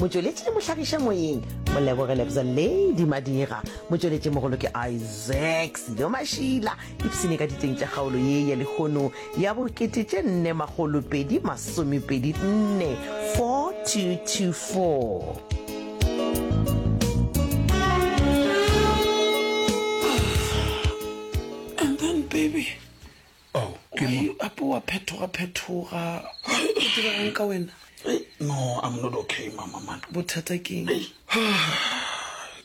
Motšweletši le mohlagiša moyeng Moleboge Lebza Lady Madira. Motšweletši mogolo ke Isaac Sido Mašila. Ipsene ka diteng tša kgaolo ye ya lehono ya bokete tše nne makgolo pedi masomepedi nne 4224. Oh, ke Why mo. you ape wa phethoga phethoga o diragong ka wena Hey, no, I'm not okay, mama man. bothata ke eng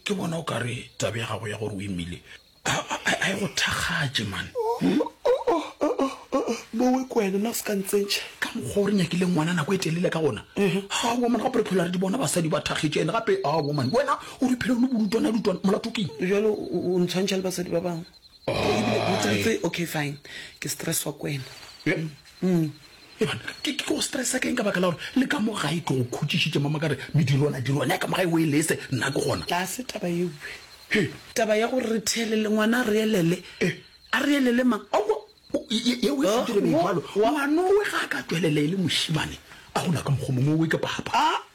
Ke bona o ka re tabe ya gago ya gore o imile a a- a e go thakgatše man. bowe ko wena na o se ka ntsentšha Ka mokgwa o re nyakile ngwana nako e telele ka gona. Ha wo man, gape re phela re di bona basadi ba thakgetše ene gape a wo man. Wena o re phela o le bolutwana lutwana molato ke eng? bjalo o o ntshwantšha le basadi ba bangwe Okay fine ke stress wa kwena ke go stressa ke eng ka baka la gore le ka mo gae ke go khutšišitše mama ka re medirwana dirwana ya ka mo gae o e lese nna ke gona ga se taba ewe taba ya gore re theelele ngwana a re elele a re elele mang ngwanowe ga a ka tswelela e le mošimane a gola ka mokgwa mongwe owe ke papa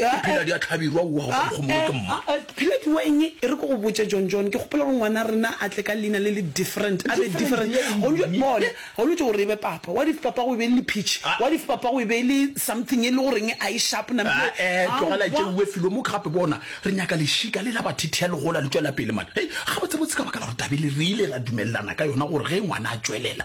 Phila di a tlhabirwa o wa go ka kgomoge ke mma. A-a-a, Phila ke wa eng e re ke go botše John John, ke gopola gore ngwana rena a tle ka leina le le different, a be Different ya different. eng? Gone bja bona, ga o no tšo gore e be papa, what if papa go e be e le lepitšhi, Ah. what if papa go e be e le something e le goreng a e sharp nam Ah, eh, tlogela e tšeuwe felo mo gape bona re nyaka lešika le la bathithia le gola le tšwela pele man hei gabotsebotse ka baka la gore tabele re ile ra dumelelana ka yona gore ge ngwana a tšwelela